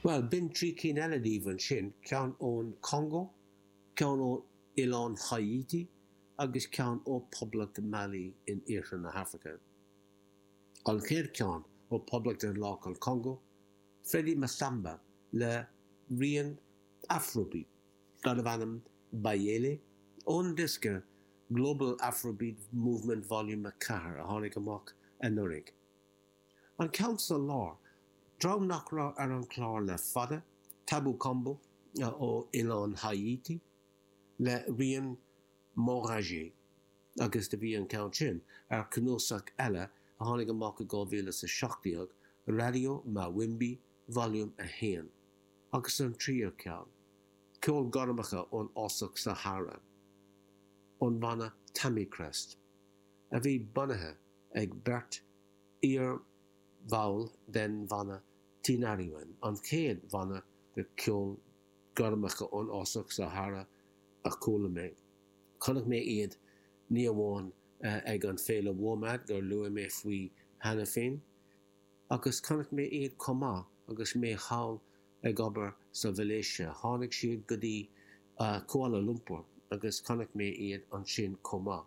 Bhuel, b'in trí cinn eile díobh ansin, ceann ón Chongó, ceann ó oileán Háítí agus ceann ó Poblacht Mali in iarthar na hAfraice. An chéad cheann, ó Poblacht Daonlathach an Congó, Freddy Massamba le rian Afrobeat darbh ainm Bayéle ón diosca Global Afrobeat Movement Volume 4 a tháinig amach anuraidh. An ceann sa lár, dream nach raibh ar an chlár le fada, Tabou Combo ó oileán Háítí le rian Mabouya agus do bhí an ceann sin ar cnuasach eile a tháinig amach i 2017, Radio Mawimbi Volume 1, agus an tríú ceann, ceol gormacha ón fhásach Sahara, ón bhanna Tamikrest, a bhí bunaithe ag beirt iar-bhall den bhanna Tinariwen, an chéad bhanna de cheol gormacha ón fhásach Sahara a chuala mé. Chonaic mé iad ní amháin ag an féile Womad gur luaigh mé faoi cheana féin, agus chonaic mé iad chomh maith agus mé thall ag obair sa Mhalaeisia. Tháinig siad go dtí Kuala Lumpur agus chonaic mé iad ansin chomh maith.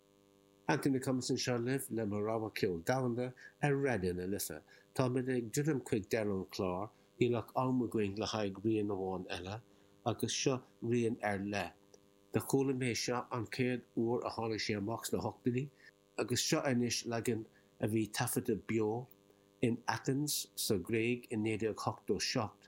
Anthony Thomasin anseo libh le mo rogha ceoil domhanda ar Raidió na Life. Táimid ag druidim chuig deireadh an chlár, níl ach am againn le haghaidh rian amháin eile, agus seo rian ar leith. Do chuala mé seo an chéad uair a tháinig sé amach sna hochtóidí, agus seo anois leagan a bhí taifeadta beo in Athens sa Ghréig i 1987.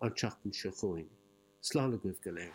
an tseachtain seo chugainn. Slán agaibh go léir.